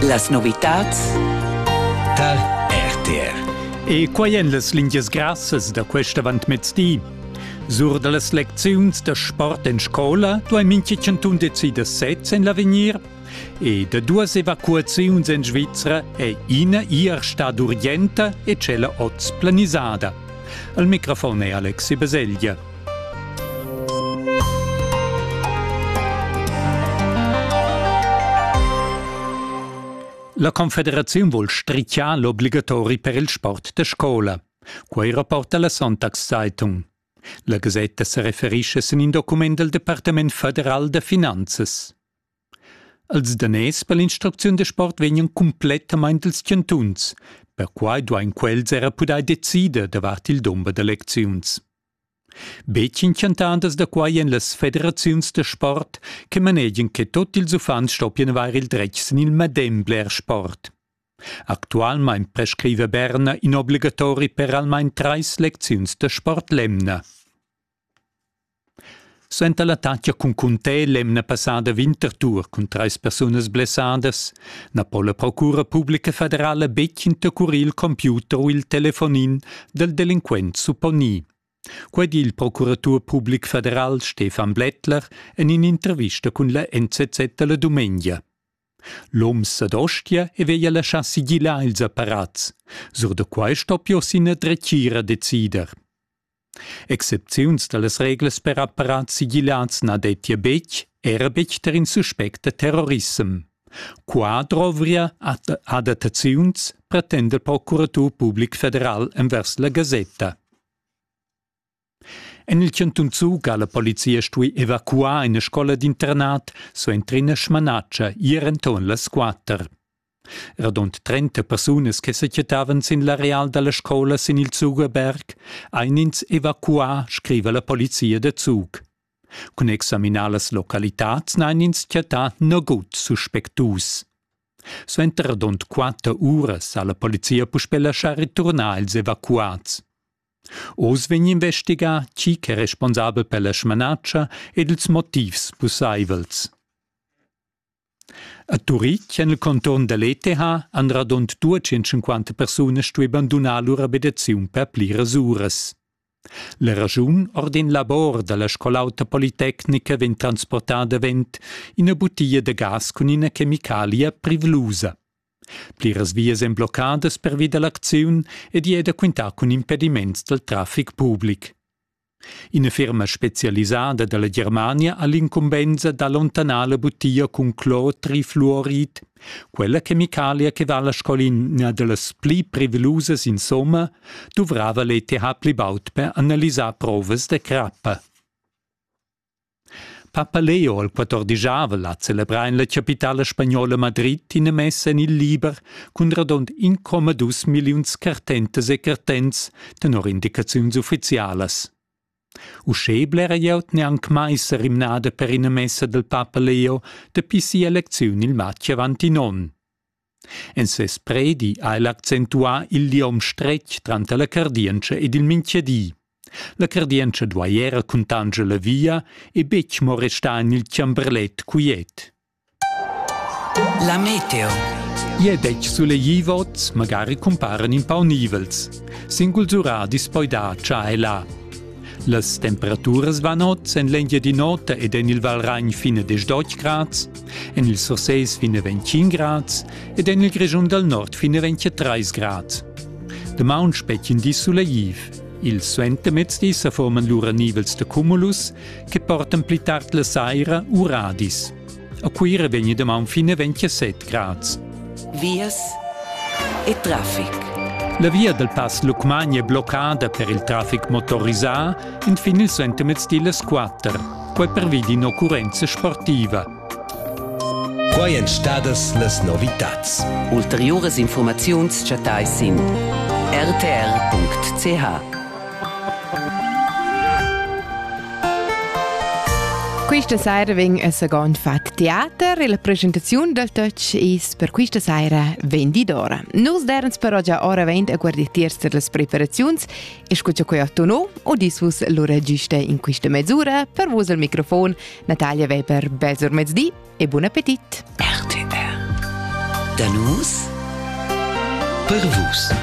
Las novitads tar RTR. E quai èn las lingias grassas da quest avantmezdi. Sur da las lecziuns da sport en scola duai mintga chantun decider sez en l'avegnir e da duas evacuaziuns en Svizra è ina ir stad urgenta e tschella oz planisada. Al microfon è Alexi Baselgia. La Confederaziun vul strichar l'obligatori per il sport da scola. Quei rapporta la Sonntagszeitung. La gasetta se referisce sin in document del Departement federal de finanzas. Els daners per l'instrucziun da sport vegnan cumplettamain dals chantuns. Perquai duain quels era pudair decider davart il dumber da lecziuns. Betg inchantandas da quai èn las federaziuns da sport che manegian che tut ils uffants stoppian avair il dretg sin il medem bler sport. Actualmain prescriva Berna in obligatori per almain trais lecziuns da sport l'emna. Suenter l'attacca cun Cuntè l'emna passada Winterthur cun trais persunas blessadas na po la Procura publica federala betg intercurir il computer u il telefonin dal delinquent supponì. Quai di il procuratur public federal Stefan Blättler en in'intervista cun la NZZ da la dumengia. L'oms ad Ostia e veglia laschar sigilar ils apparats. Sur da quai stoppia oss ina dretgira decider. Excepziuns dallas reglas per apparats sigillats na dettia betg, era betg tar in suspect da terrorissem. Qua drovria adattaziuns, pretenda il procuratur public federal envers la gasetta. En il cantun Zug ha la polizia stuì evacuar ina scola d'internat suenter ina smanatscha ier enturn las quatter. Radund trenta persunas che sequietavan sin l'areal dalla scola sin il Zugerberg ein ins evacuà, scriva la polizia da Zug. Cun examinar las localitads n'ein ins chattà nagut suspectus. Suenter radund quatter uras ha la polizia puspè laschà returnar ils evacuats. Oz vegn investigà chi ch'è responsabel per la smanatscha ed ils motivs pussaivels. A Turitg en il conturn da l'ETH han radund duecentschenquanta persunas stuì bandunar lur abitaziun per pliras uras. La raschun ord in labor da la scol'auta politecnica vegn transportà davent ina butia da gas cun ina chemicalia privlusa. Pliras vias èn bloccadas pervi da l'acziun ed i è da quintar cun impediments dal traffic public. Ina ferma spezialisada dalla Germania ha l'incumbensa d'allontanar la butia cun clortrifluorid, quella chemicalia che vala sco ina dallas pli prevelusas insomma, duvrava l'ETH pli baud per analisar provas da crappa. Papa Leo il quattordijavel ha celebrà en la chapitala spagnola Madrid ina messa en il liber cun radund incomadus milliuns cartentas e cartents tenor indicaziuns uffizialas. Uschè blera glieud n'è anc mai sa rimnada per ina messa dal papa Leo dapi sia lecziun il matg avant in onn. En ses predi ha el accentuà il liom stretg tranter la cardientscha ed il mintgadi. La cardientscha duai era cuntanscher la via e betg mo restar en il chamberlet quiet. La meteo. Ie dec sulegli vots, magari cumparen in pau nivels. Singul zura dispoida cha è là. Las temperaturas van oz en l'Engiadin'Ota ed en il Valragn fine 10 grad, En il Surseis fin a 25 grads ed en il Grischun dal Nord fin a 23 grads. Damaun spetgin di suleiv. Il suentermezdi sa forman lura nivels da cumulus che portan pli tard la saira uradis. A Cuira vegni damaun fin a 27 grads. Vias e traffic. La via dal Pass Lucmagna è bloccada per il traffic motorisà entfin il suentermezdi las 4. quai pervi d'in'occurrenza sportiva. Quai èn stadas las novitads. Ulteriuras informaziuns chattais sin rtr.ch. Questa sera vegn il secondo fat teater e la presentazione del touch is per questa sera 20 d'ora. Nus derens però già ora 20 a guarditiers per las preparaziuns Escuta quei tono o dis vus lura giusta in questa mezz'ora per vus al microfon Natalia Weber Besor mezdi e buon appetit. RTR. Da nus per vus.